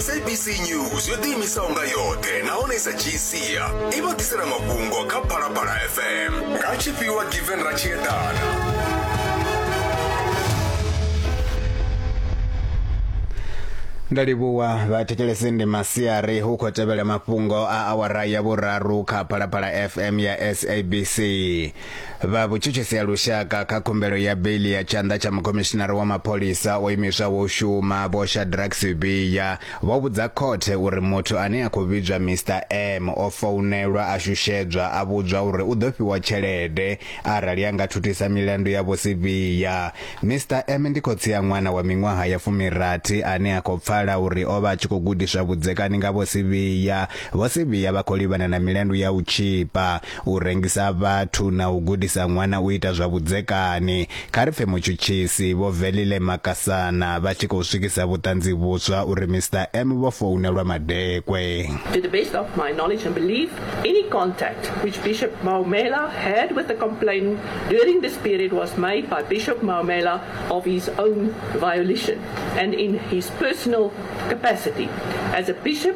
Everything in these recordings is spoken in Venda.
sabc news yo ḓiimisaho nga yoṱhe nahone i sa dzhii sia i vha ḓisela mafhungo kha phalaphala fm nga tshifhiwa given ra tshi eḓana ndo livhuwa vhathetshelesi ndi masiari hu khou tevhela mafhungo a awara ya vhuraru kha phalaphala fm ya sabc vha vhutshutshisi ha lushaka kha khumbelo ya beiḽi ya tshanḓa tsha mukhomishinari wa mapholisa o imiswaho u shuma vho shadrack sibiya vho vhudza khothe uri muthu ane a khou vhidzwa mr m o founelwa a shushedzwa a vhudzwa uri u ḓo fhiwa tshelede arali a nga thuthisa milandu ya vho sibiya mr m ndi khotsi a ṅwana wa miṅwaha ya fumirathi ane a khou pfala uri o vha a tshi khou gudiswa vhudzekani nga vho sibiya vho sibiya vha khou livhana na milandu ya u tshipa u rengisa vhathu na u gudisa ṅwana u ita zwa vhudzekani. Kha ri pfe mutshutshisi Vho Velile Makasana vha tshi khou swikisa vhuṱanzi vhuswa uri Mister M vho founelwa madekwe. To the best of my knowledge and belief, any contact which Bishop Maumela had with the complainant during this period was made by Bishop Maumela of his own volition and in his personal capacity as a bishop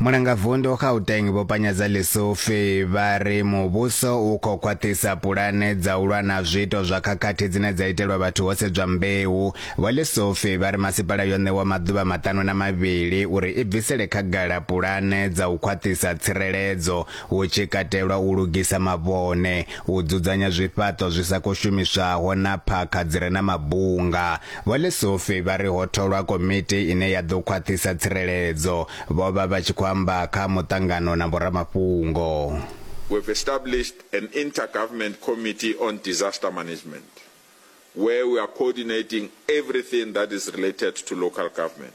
Mulangavundu Gauteng Vho Panyadza Lesufi vha ri muvhuso u khou khwaṱhisa pulane dza u lwa na zwiito zwa khakhathi dzine dza itelwa vhathu ho sedzwa mbeu. Vho Lesufi vha ri masipala yo ṋewa maḓuvha maṱanu na mavhili uri i bvisele khagala pulane dza u khwaṱhisa tsireledzo hu tshi katelwa u lugisa mavhone, u dzudzanya zwifhaṱo zwi sa khou shumiswaho na phakha dzi re na mabunga. Vho Lesufi vha ri ho tholwa komiti ine ya ḓo khwaṱhisa tsireledzo. Vho vha vha tshi khou amba kha muṱangano na vhoramafhungo. We have established an inter-government committee on disaster management where we are coordinating everything that is related to local government.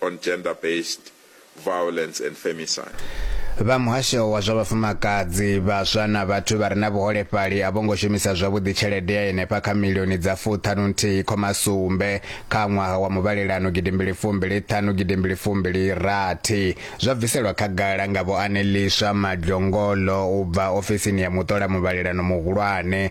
on Gender Based Violence and Femicide. Vha muhasho wa zwa vhafumakadzi, vhaswa na vhathu vha re na vhuholefhali a vho ngo shumisa zwavhuḓi tshelede ya henefha kha milioni dza fuṱhanu nthihi khoma sumbe kha ṅwaha wa muvhalelano gidimbili fumbili ṱhanu gidimbili fumbili rathi zwa bviselwa khagala nga Vho Aneliswa Madlongolo u bva ofisini ya muṱola muvhalelano muhulwane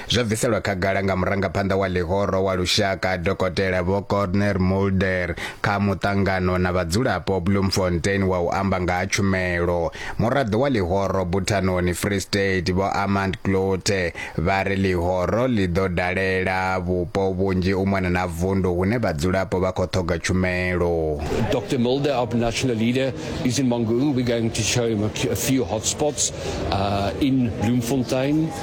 Zwo bviselwa khagala nga murangaphanḓa wa ḽihoro wa lushaka Dokotela Vho Corner Mulder kha muṱangano na vhadzulapo Bloemfontein wa u amba nga ha tshumelo. Muraḓo wa ḽihoro Buthanoni Free State Vho Armand Kloete vha ri ḽihoro ḽi ḓo dalela vhupo vhunzhi u mona na vundu hune vhadzulapo vha khou ṱhoga tshumelo. Dr Mulder our national leader is in Mangaung we're going to show him a few hotspots uh, in Bloemfontein.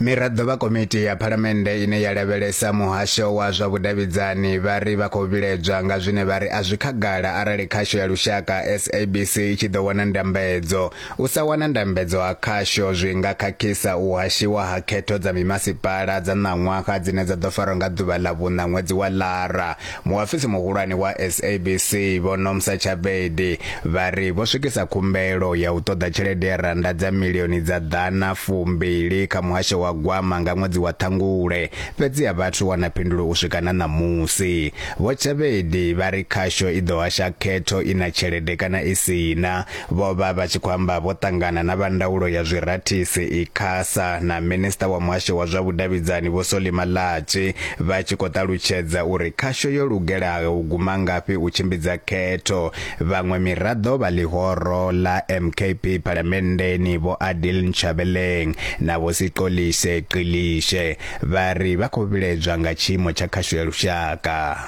miraḓo vha komiti ya phalamennde ine ya lavhelesa muhasho wa zwa vhudavhidzani vha ri vha khou vhiledzwa nga zwine vha ri a zwi khagala arali khasho ya lushaka sabc i tshi ḓo wana ndambedzo U sa wana ndambedzo ha khasho zwi nga khakhisa u hashiwa ha khetho dza mimasipala dza ṋaṅwaha dzine dza ḓo farwa nga ḓuvha ḽa vhuṋa ṅwedzi wa Lara. Muafisi muhulwane wa SABC Vho Nomsa Chabedi vha ri vho swikisa khumbelo ya u ṱoḓa tshelede ya rannda dza milioni dza ḓana fumbili kha muhasho wa gwama nga ṅwedzi wa Ṱhangule fhedzi a vhathu wana phindulo u swika na ṋamusi. Vho Chabedi vha ri khasho i ḓo hasha khetho i na tshelede kana i si na Vho vha vha tshi khou amba vho ṱangana na vha ndaulo ya zwirathisi, Icasa, na Minisiṱa wa Muhasho wa zwa Vhudavhidzani Vho Solly Malatji vha tshi khou ṱalutshedza uri khasho yo lugelaho u guma ngafhi u tshimbidza khetho. Vhaṅwe miraḓo vha ḽihoro ḽa MKP Phalamenndeni Vho Adil Nchabeleng na Vho Sixolise Xilishe vha ri vha khou vhiledzwa nga tshiimo tsha khasho ya lushaka.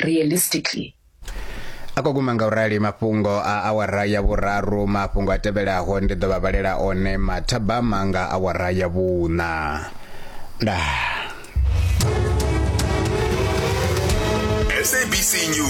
realistically a khou guma nga u rali mafhungo a awara ya vhuraru mafhungo a tevhelaho ndi ḓo vha vhalela one mathabama nga awara ya vhuṋa nda sabc news